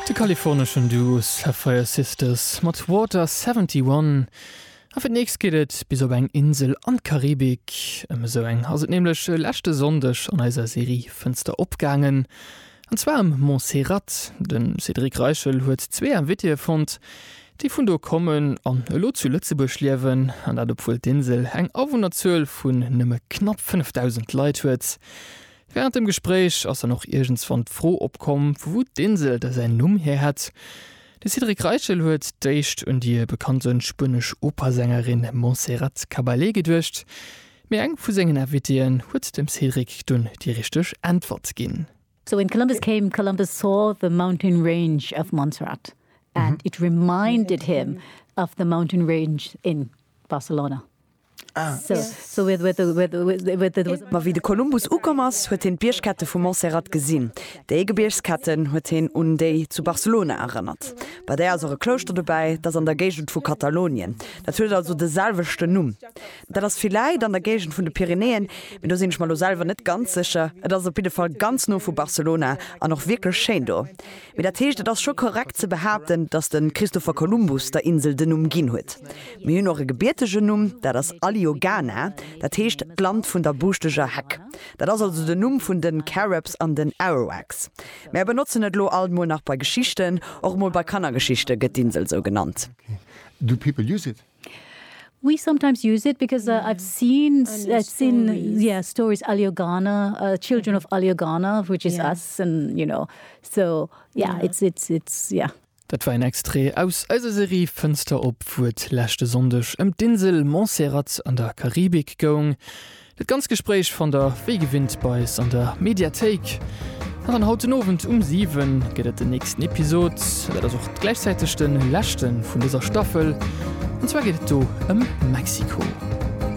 De kaliforneschen Duo Sapphire Sisters mat Water 71 a fir d'nächst geet et bis op eng Insel an d'Karibik. Ëm esou eng ass et nämlech e leschte Sonndeg an eiser Serie Fënster op gaangen, an zwar ëm Montserrat. De Cédric Reichel huet zwee Invitéeë fonnt, déi vun do kommen an elo zu Lëtzebuerg liewen, an dat obwuel d'Insel eng Awunnerzuel vun nëmme knapp 5.000 Leit huet. Während dem Gespréich ass dann och iergendswann d'Fro opkomm, vu wou d'Insel da säin Numm hier hätt. De Cédric Reichel huet d'éischt un déi bekannt sou spuenesch Operasängerin Montserrat Caballé geduecht, mee eng vu sengen Invitéen huet dem Cédric dunn déi richteg Äntwert ginn. So when Columbus came, Columbus saw the mountain range of Montserrat and it reminded him of the mountain range in Barcelona. Ma wéi de Kolumbus ukomm ass, huet hien d'Biergkette vu Montserrat gesinn. Déi Gebiergsketten huet hien un déi zu Barcelona erënnert. Bei där ass och e Klouschter dobäi, dat an der Géigend vu Katalonien. Dat huet also de selwechten Numm. Dat ass villäit an der Géigend vun de Pyrenäen, mee do sinn ech mer elo selwer net ganz sécher. Et ass op jidde Fall ganz no vu Barcelona an och wierklech schéin do. Mee dat heescht, et ass scho korrekt ze behaapten, datt de Christopher Columbus der Insel den Numm ginn huet. Mir hunn och e gebiertegen Numm, dat ass Aliogana, dat heescht d'Land vun der buschteger Heck. Dat ass also den Numm vun de Carëbs an den Arawaks. Mär benotzen et elo alt mol nach bei Geschichten. Och mol bei Kannergeschichte gëtt d'Insel esou genannt. Do people use it. We sometimes use it because uh, I've seen s- Alio uh, seen stories. yeah stories Aliogana, uh, children of Aliogana, which is Yeah. us, and you know, so yeah, Yeah. it's it's it's yeah. Dat war een Extrait aus eiser Serie Fënster op, wou et leschte Sonndeg ëm d'Insel Montserrat an der Karibik goung. Dat ganz Gespréich fannt der wéi gewinnt bei eis an der Mediathéik. Nach en haut den Owend um 7 gëtt et den nächsten Episod. Dat ass och gläichzäiteg de leschte vun dëser Staffel. An zwar geet et do ëm Mexiko.